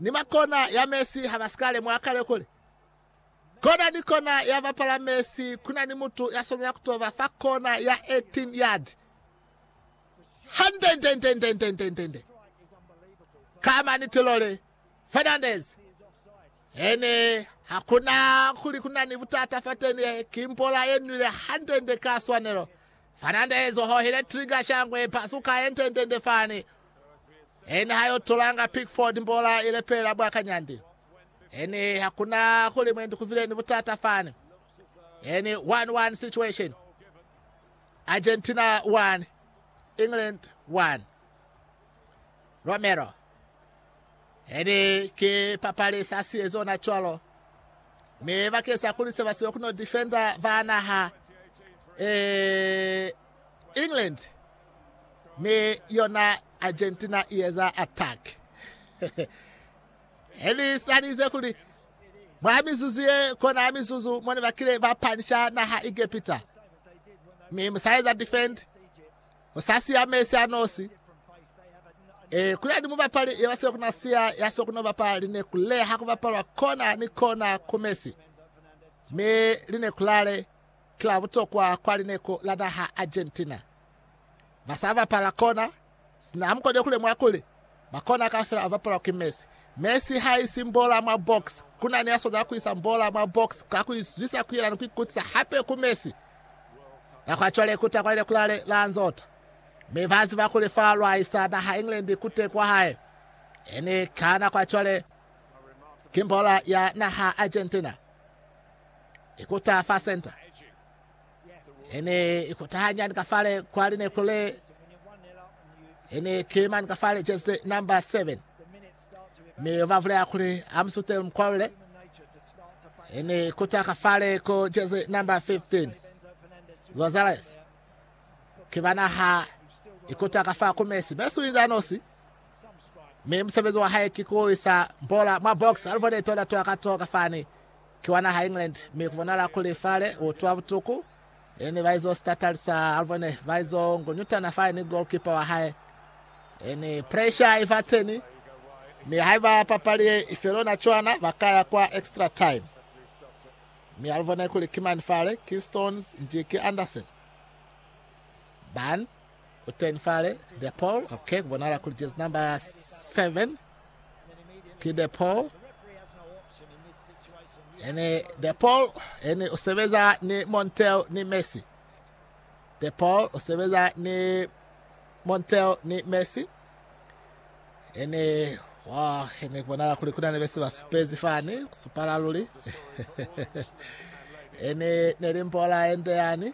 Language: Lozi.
ni ba kona ya mesi ha ba si ka lemuha kale kuli kona ni kona ya bapala mesi ku na ni mutu ya swanela ku toba fa kona ya 18 yard. Handendendendendendende! Ka maniti lole, Fernandez ene hakuna kuli kuna ni butata fateni ye kimpola ye nwile handende ka swanelo Fernandez hohile trigger shangwe pasuka entendende fani Ene ha yo tolanga Pickford mbola i lepela bwa kanyandi. Ene ha kuna kuli mwendi kuvile ni butata fani. Ene 1-1 situation. Argentina 1, England 1. Romero. Ene ke papali sa siye zona cwalo. Me bakesa kuli se ba siyo kuno defender ba naha. Eh, England ni yona Argentina i eza attack. Eli salize kuli mwa mizuzu ye kona ya mizuzu mone bakile ba panisha naha Egepita mi musaeza defend musasiya Messi anosi e kuli adi mubapali ye basile kuna siya ya so kuno bapala line kuleha kubapalwa kona ni kona ku Messi mi line kulale Kila butokwa kwa lineko la naha Argentina, ba sa bapala kona, sina ha mukone kulemwa kuli, makona kaufela a bapalwa ki Messi. Messi ha isi mbola mwa box. Kuna ni ya swanela ku isa mbola mwa box ka ku izwisa ku yena ni ku ikutisa hape ku Messi. Nako ya cwale ikuta kwa lileku lale la nzota, mi ba ziba kuli fa lwa isa naha England ku te kwa hae. Eni ka nako ya cwale ki mbola ya naha Argentina. i kuta fa senta. I ne i kuta hanyani ka fale kwa lineku le. I ne ki mani ka fale jezi number 7. Mi ba vulela kuli Amsute Mkwalule. I ne i kuta ka fale ko jezi number 15. Gonzalez. Ki bana ha i kuta ka fa ku Messi. Messi u inze anosi. Mi musebezi wa hae ki ku isa bola mwa box. Alivone tona toa ka to ka fani. Ki wa naha ya England, mi ku bonala kuli fale u utwa butuku. E ne ba izo sitatali sa Alvone, ba izo ngunyutana fale ni goalkeeper wa hae. E ne pressure i ba teni, mi haiba papali ye i felo na cwana, ba ka ya kwa extra time. Mi Alvone kuli ki mani fale, ki Stones nji ki Anderson. Ban u teni fale, De Paul, okay, ku bonala kuli jezi number 7. ki De Paul ene De Paul ene o sebeza ni Montel ni Messi De Paul o sebeza ni Montel ni Messi ene wa ene bonala kuli kuna ne bese ba supezi fani supala luli ene ne limbola ende yani